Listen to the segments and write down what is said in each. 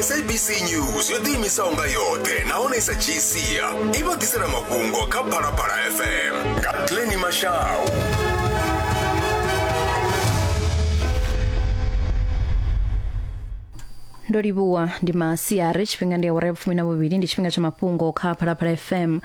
sabc news yo ḓiimisaho nga yoṱhe nahone i sa dzhii sia i vha ḓisela mafhungo kha phalaphala fm nga pleni mashau ndo livhuwa ndi masiari tshifhinga ndi awara ya vhufumi na vhuvhili ndi tshifhinga tsha mafhungo kha phalaphala fm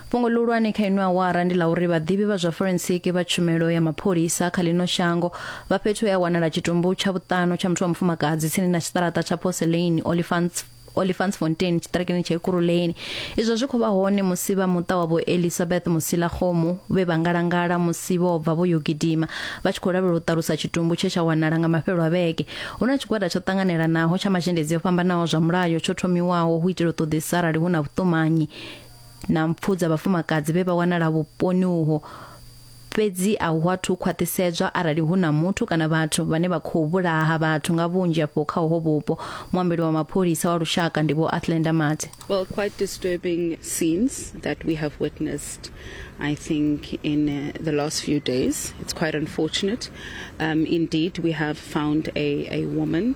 Fhungo ḽihulwane kha ino awara ndi ḽa uri vhaḓivhi vha zwa forensiki vha tshumelo ya mapholisa kha ḽino shango vha fhethu he a wanala tshitumbu tsha vhuṱanu tsha muthu wa mufumakadzi tsini na tshiṱaraṱa tsha Porcelain Olifants Olifantsfontein tshiṱarakeni tsha Ekurhuleni izwo zwi khou vha hone musi vha muṱa wa vho Elizabeth Musila Khomu vhe vha ngalangala musi vho bva vho yo gidima vha tshi khou lavhelela u ṱalusa tshitumbu tshe tsha wanala nga mafhelo a vhege hu na tshigwada tsho ṱanganelanaho tsha mazhendedzi o fhambanaho zwa mulayo tsho thomiwaho hu itela u ṱoḓisa arali hu na vhuṱumanyi na mpfu dza vhafumakadzi vhe vha wanala vhuponi uho fhedzi a hu athu khwaṱhisedzwa arali hu na muthu kana vhathu vhane vha khou vhulaha vhathu nga vhunzhi afho kha uho vhupo muambeli wa mapholisa wa lushaka ndi vho Athlenda Mate Well, quite disturbing scenes that we have witnessed, I think, in uh, the last few days. It's quite unfortunate. Um, indeed, we have found a, a woman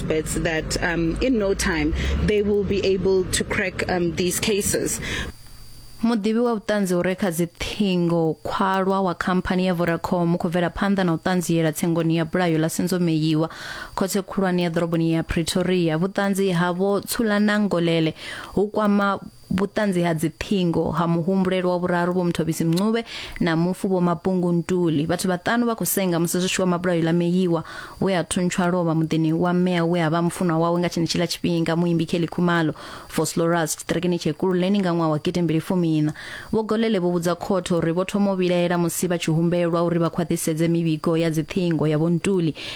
bets that um, in no time they will be able to crack um, these cases. muḓivhi wa vhuṱanzi u re kha dziṱhingo khwalwa wa khamphani ya vodacom u khou bvela phanḓa na u ṱanziela tsengoni ya bulayo ḽa senzomeyiwa khothe khulwane ya ḓoroboni ya pretoria vhuṱanzi havho tsulanangolele hu kwama Vhuṱanzi ha dziṱhingo ha muhumbulelwa wa vhuraru Vho Mthobisi Mncube na mufu Vho Mapungu Ntuli. Vhathu vhaṱanu vha khou senga musi zwi tshi wa mabulayo ḽa Meyiwa we a thuntsha a lovha muḓini wa mme awe a vha mufunwa wawe nga tshenetshiḽa tshifhinga muimbi Kelly Khumalo, Vosloorus, tshiṱirikini tsha Ekurhuleni nga ṅwaha wa gidi mbili fumiiṋa. Vho Golele vho vhudza khothe uri vho thoma u vhilaela musi vha tshi humbelwa uri vha khwaṱhisedze mivhigo ya dziṱhingo ya Vho Ntuli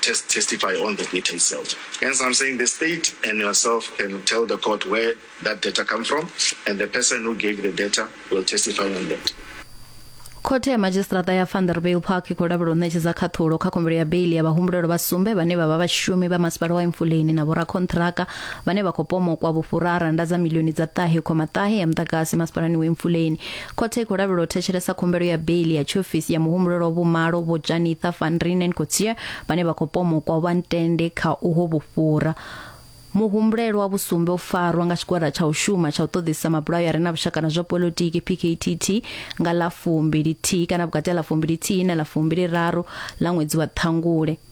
test, testify on the data itself. Hence, I'm saying the state and yourself can tell the court where that data come from, and the person who gave the data will testify on that. khothe ya madzhisiṱiraṱa ya vanderbill park i khou lavhela u ṋetshedza khaṱhulo kha khumbelo ya beili ya vhahumbulelwa vha sumbe vhane vha vha vhashumi vha masipala wa emfuleni na vhorakhonṱhiraka vhane vha khou pomokwa vhufhura ha rannda dza milioni dza ṱahe khoma ṱahe ya muḓagasi masipalani wa emfuleni Khothe i khou lavhelela u thetshelesa khumbelo ya beili ya tshiofisi ya muhumbulelwa vhumalo Vho Janitha van Reenen Coetzee vhane vha khou pomokwa vha ntende kha uho vhufhura. Muhumbulelwa vhu sumbe u farwa nga tshigwada tsha u shuma tsha u ṱoḓisa mabulayo a re na vhushaka na zwa politiki PKTT nga ḽa fumbili thihi kana vhukati ha ḽa fumbili thihi na ḽa fumbili raru ḽa ṅwedzi wa ṱhangule.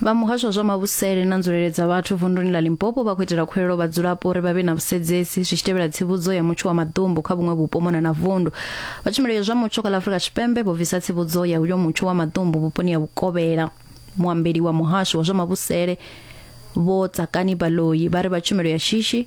vha muhasho wa zwa mavhusele na nzulele dza vhathu vunduni ḽa limpopo vha khou itela khuwelelo vhadzulapo uri vha vhe na vhusedzesi zwi tshi tevhela tsivhudzo ya mutsho wa maḓumbu kha vhuṅwe vhupo mona na vundu vha tshumelo ya zwa mutsho kha ḽa afurika tshipembe vho bvisa tsivhudzo ya uyo mutsho wa maḓumbu vhuponi ha vhukovhela muambeli wa muhasho wa zwa mavhusele vho tsakani baloyi vha ri vha tshumelo ya shishi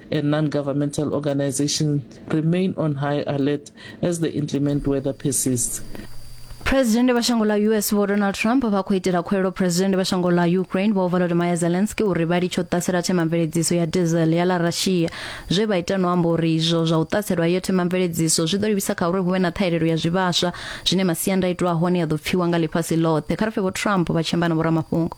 and non-governmental organizations remain on high alert as the inclement weather persists. phuresidennde vha shango ḽa us vho donald trump vha khou itela khuwelelo phuresidennde vha shango ḽa ukraine vho volodymyr zelensky uri vha litshe u ṱasela themamveledziso ya diesel ya ḽa russia zwe vha ita no amba uri izwo zwa u ṱaselwa iyo themamveledziso zwi ḓo livhisa kha uri hu vhe na ṱhahelelo ya zwivhaswa zwine masiandaitwa a hone a ḓo pfiwa nga ḽifhasi ḽoṱhe kha ri pfe vho trump vha tshi amba na vhoramafhungo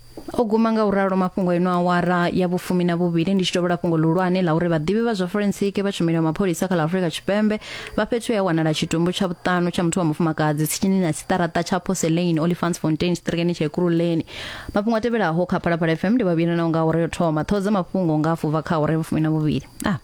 o guma nga u ralo mafhungo eno awara ya vhufumi na vhuvhili ndi tshi tovhola fhungo ḽihulwane ḽa uri vhaḓivhi vha zwa forensiki vha tshumelo ya mapholisa kha ḽa afurika tshipembe vha fhethu ya wanala tshitumbu tsha vhuṱanu tsha muthu wa mufumakadzi tsini na siṱaraṱa tsha porcelain olifants fontain sitirikeni tsha ekuruleni mafhungo a tevhelaho kha phalaphala fm ndi vhavhili na unga awara yo thoma ṱhoho dza mafhungo nga afuva kha awara ya vhufumi na vhuvhili ah.